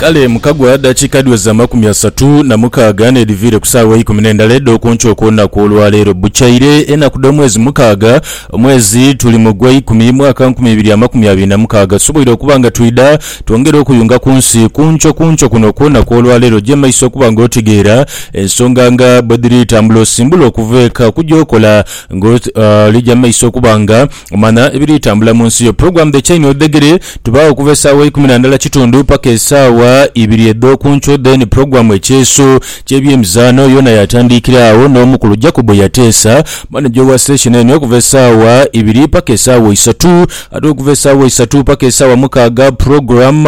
Kale mukagwa dakiika dhiweza amakumi asatu na mukaaga n'edhiviire ku saawa eikumi n'endala edh'oku nkyo okw'olunaku olwa leero. Bucaire enaku dh'omwezi mukaaga, omwezi tuli mu Gweikumi, mwaka nkumi ibiri amakumi abiri na mukaaga, tusoboire okuba nga twidha twongere okuyunga ku nsi ku nkyo ku nkyo kuno okw'olunaku olwa leero. Gya maiso okuba nga otegeera ensonga nga bwe dhiri tambula, osimbula okuva eka okugya okola nga oli gya maiso okuba nga Omanha ebiri tambula mu nsi yo. Program The Chain of the Giri tubaagho okuva esaawa eikumi na ndhala kitundu paka esaawa ibiri edh'okunkyo then program Ekyeeso ky'ebyemizaano yoona yaatandiikira agho n'omukulu Jacob Yateesa, manager owa station eno okuva esaawa ibiri paka esaawa isatu ate okuva esaawa isatu paka esaawa mukaaga program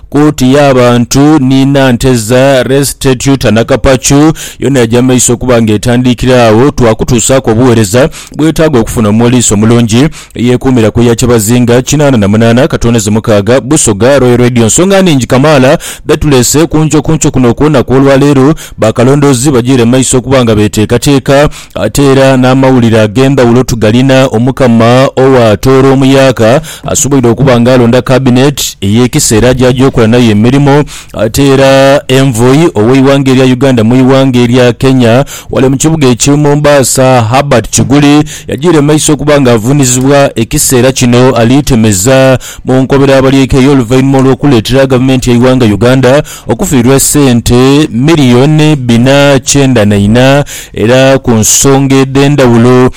Kooti y'abantu ni Nanteza Restitutanakapacu yoona yaja mu maiso okuba nga etandiikira agho twakutuusaaku obuweereza. bwetaaga okufuna omuwaliisi omulungi eyeekuumira ku ya kyebazinga kinaana na munaana ka toonizi mukaaga. Busoga Royal Radio nsonga nhingi kamaala dhetuleese ku nkyo ku nkyo kuno okw'olunaku olwaleero, bakalondoozi bagiire mu maiso okuba nga beteekateeka ate era n'amawulire ag'endhawulo tugalina. Omukama owa Tooro Omuyaaka asoboire okuba nga alonda Kabineti ey'ekiseera gy'aja okola nayo emirimo. Ate era Envoy ow'eighanga erya Uganda mu ighanga erya Kenya ghale mu kibuga ekye Mombasa Herbert Kiguli yajiire mu maiso okuba nga avunizibwa ekiseera kino ali temeza mu nkobera abalyekeye oluvainhuma olw'okuleetera gavumenti yeighanga Uganda okufiirwa esente million bina kyenda na ina era ku nsonga edhendhawulo.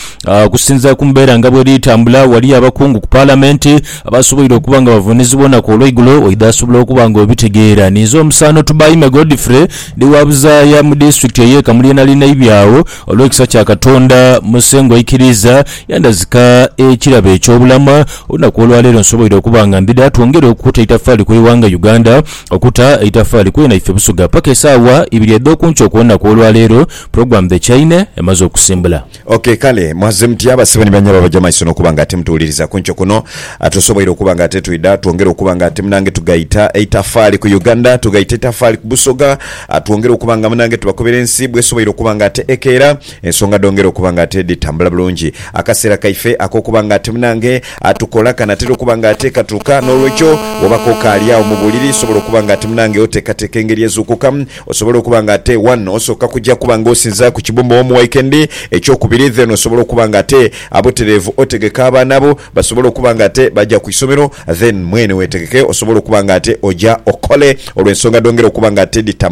Okusinzira ku mbeera nga bweri tambula waliyo abakungu ku palamenti Aba asoboire okuba nga bavuunizibwa olunaku olweigulo oidha asobola okuba nga obitegeera. Ninze omusaano Tubaime Godfrey, ndi wa buzaaya mu disitulikiti eye Kamuli enali naibye agho. Olwekisa kya Katonda Musengwa aikiriiza yandhazika ekirabo ekyobulama, olunaku olwaleero nsoboire okuba nga mbida twongere okukuta eitafaali ku ighanga Uganda, okuta eitafaali kwena ife Busoga paka esaawa ibiri edhokunkyo kulunaku olwaleero, program The Chaine emaze okusimbula. Ok, kale mwaze mutya basebo ni banyabo abaja mumaiso nokuba nga ate mutuwuliriza kunkyo kuno. Tusoboire okuba nga ate twidha twongere okuba nga ate munange tugaita eitafaali ku Uganda, tugaita eitafaali ku Busoga, twongere okuba nga munange tubakobera ensi bwesoboire okuba nga ate ekeera, ensonga dhongere okuba nga ate dhitambula bulungi. Akaseera kaife akokuba nga ate munange tukola kanatera okuba nga ate katuuka, nolwekyo woba kokaali agho mubuliri sobola okuba nga ate munange otekateka engeri ezuukukamu, Osobola okuba nga ate one osooka kuja kuba nga osinza ku kibumba omu waikendi ekyokubiri then osobola okuba nga ate abuterevu otegeka abaana bo basobole okuba nga ate baja ku isomero then mwene wetegeke osobola okuba nga ate oja okole olwensonga dhongere okuba nga ate dhitambula